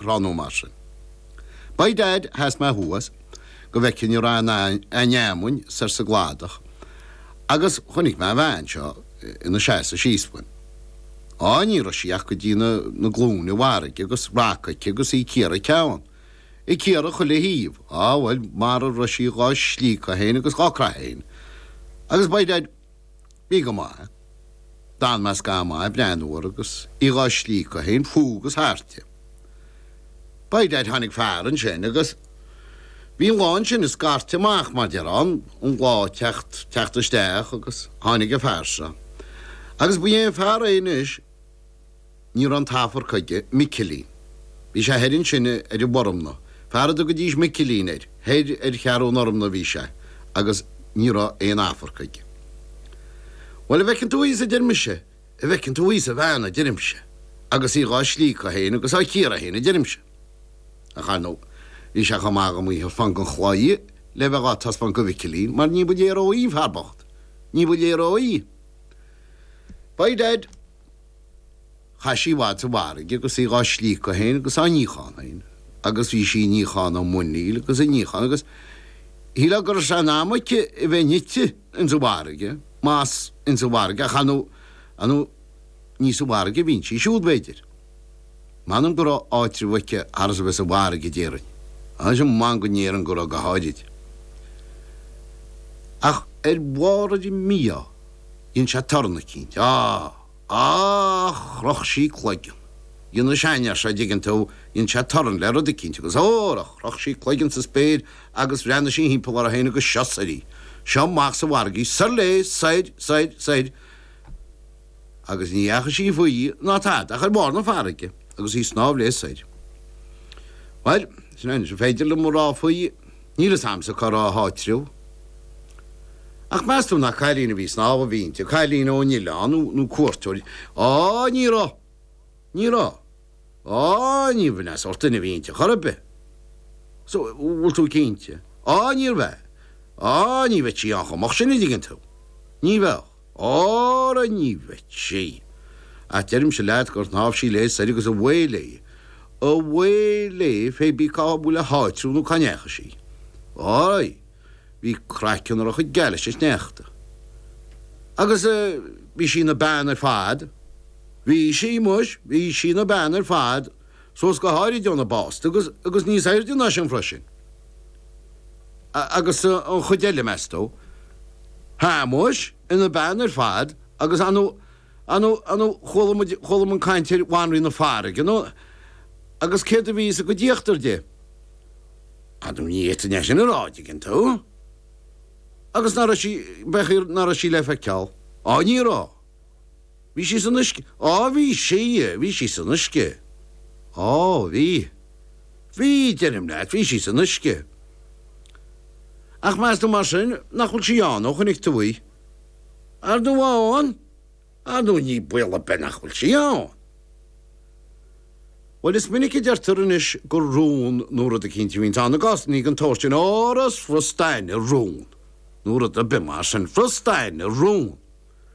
tráth nó mar sin. By dad sheas mé thuas go bhfeicfinn a raibh an fheamainn soir sa gcladach agus chonaic mé an bhean seo ina seasamh síos fúm. Á, ní raibh sí ach go dtí na glúine i bhfarraige agus raca aici agus í ag cíoradh a ceann, ag cíoradh chuile thaobh. Á, bhuel, mara raibh sí dhá slíocadh féin agus dhá craitheadh féin. Agus by dad. Bhí go maith. D'fhan mé scathamh maith ag breathnú uirthi agus í dhá slíocadh féin fúithi agus thairti. By dad tháinig fear ansin agus bhí an lá ansin ag scairteadh amach mar déarfá an an lá ag teacht teacht isteach agus tháinig an fear seo agus ba é an fear é anois Ní raibh an t-afarc aige, Micilín. Bhí sé thoir ansin ar an bhFormna. Fear a dtugaidís Micilín air. Thoir ar Cheathrú an Fhormna a bhí sé agus ní raibh aon afarc aige. Bhuel, a' bhfeiceann tú thíos, a deir mise, a' bhfeiceann tú thíos an bhean, a deirimse, agus í dhá slíocadh fhéin agus á cíoradh fhéin, a deirimse. Ach, ar ndóigh, bhí sé chomh maith agam í a thaispeáint gon chlaí le bheith dhá taispeáint go Mhicilín mar ní ba léir dhó í, an fear bocht. Ní ba léir dhó í. By dad. Chaith sí i bhfad sa bhfarraige agus í dhá slíocadh féin agus á níochán féin agus bhí sí ag níochán a muiníl agus ag níochán agus shílfeá gur seanam aici a bheith nite ins an bhfarraige más ins an bhfarraige ach ar ndóigh ar ndóigh ní sa bhfarraige a bhíonn sí siúd b'fhéidir. M'anam go raibh áitreabh aici thar is a bheith sa bhfarraige a déarfainn anois m'anam go ndéarfainn go raibh go háirid ach ar bharr ar a mbíodh. Dhein sé torann eicínt. Á! Á! Chroch sí cloigeann. Dhein an seanfhear seo, dtuigeann tú, dhein sé torann le rud eicínt agus hóra, chroch sí cloigeann sa spéir agus bhreathnaigh sí thimpeall uirthi féin agus seo soir í, seo amach sa bhfarraige í, soir léi, soir, soir, soir, agus ní dheachaigh sí faoi ná tada ach ar bharr na farraige agus í ag snámh léi soir. Bhail, sin é is féidir liom a rá faoi. Níl 'fhios a'msa cá raibh a háitreabh. Ach meas tú nach cailín a bhí ag snámh a bhí inti, cailín ón Oileán nó, nó cuairteoir, á ní raibh, ní raibh, á níorbh é an sórt duine a bhí inti chor ar bith. So, bhfuil tú cinnte? Á níorbh ea, á ní bheadh sí ann chomh moch sin an dtuigeann tú, ní bheadh. Óra ní bheadh sí. Ach deirimse leat gur shnámh sí léi soir agus away léi. Away léi fé bí cá bhfuil a háitreabh nó cá ndeachaigh sí. Ói, bhí craiceann uirthi chomh geal leis an sneachta. Agus bhí sí ina bean ar fad. Bhí sí, muis, bhí sí ina bean ar fad, suas go háirid óna básta agus, agus níos aoirde ná sin freisin. Agus an chuid eile, meas tú? Shéamuis, Ina bean ar fad agus anu, anu, anu, chuala muid, chuala muid caint ar Bhanríon na Farraige, ar ndú, agus céard a bhí sa gcuid íochtar di? Ar ndú, ní fhéadfainn é sin a rá, an dtuigeann tú? Agus nach raibh sí, b'fhéidir nach raibh sí le feiceáil? Á, ní raibh. Bhí sí san uisce. Á, bhí sí, bhí sí san uisce. Á, bhí. Bhí, deirim leat, bhí sí san uisce. Ach meas tú mar sin nach bhfuil sí ann, ó chonaic tú í? Ar ndú á, ann? Ar ndú níl baol a' bith nach bhfuil sí ann. Bhuel, is minic a deirtear anois gur rón nó rud eicínt a bhíonns ann i gcásannaí den tsórt sin. Óra 's furasta aithne rón nó rud a' bith mar sin. Furasta aithne rón.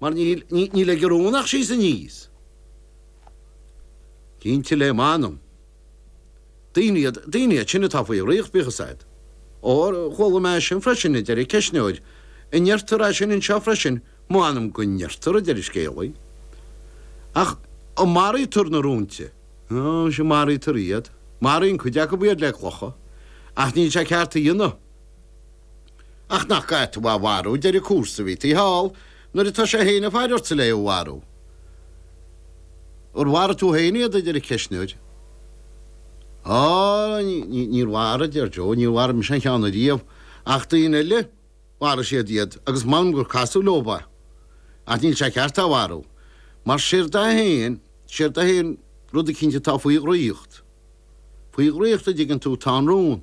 mar níl, ní, níl ag an rón ach síos aníos. Cinnte le m'anam. Daoine iad, daoine iad sin atá faoi dhraíocht, bíodh a fhios a'd. Ó, chuala mé é sin freisin, a deir an ceistneoir. An ndeirtear é sin anseo freisin? M'anam go ndeirtear, a deir an scéalaí. Ach an maraítear na rónta? Ó, sea, maraítear iad. Maraíonn cuid acub iad le clocha. Ach níl sé ceart a dhéanamh. Ach nach ait tú a mharú deireadh cúrsa, bhí tú thall, nuair atá sé fhéin ag faire ortsa le é a mharú. Ar mharaigh tú fhéin iad, a deir an ceistneoir. Á, ní, níor mharaigh, a deir Joe, níor mharaigh mise aon cheann ariamh, ach daoine eile, mharaigh siad iad agus m'anam gur casadh leob é. Ach níl sé ceart é a mharú, mar séard é fhéin, séard é fhéin, rud eicínt atá faoi dhraíocht. Faoi dhraíocht, an dtuigeann tú, tá an rón.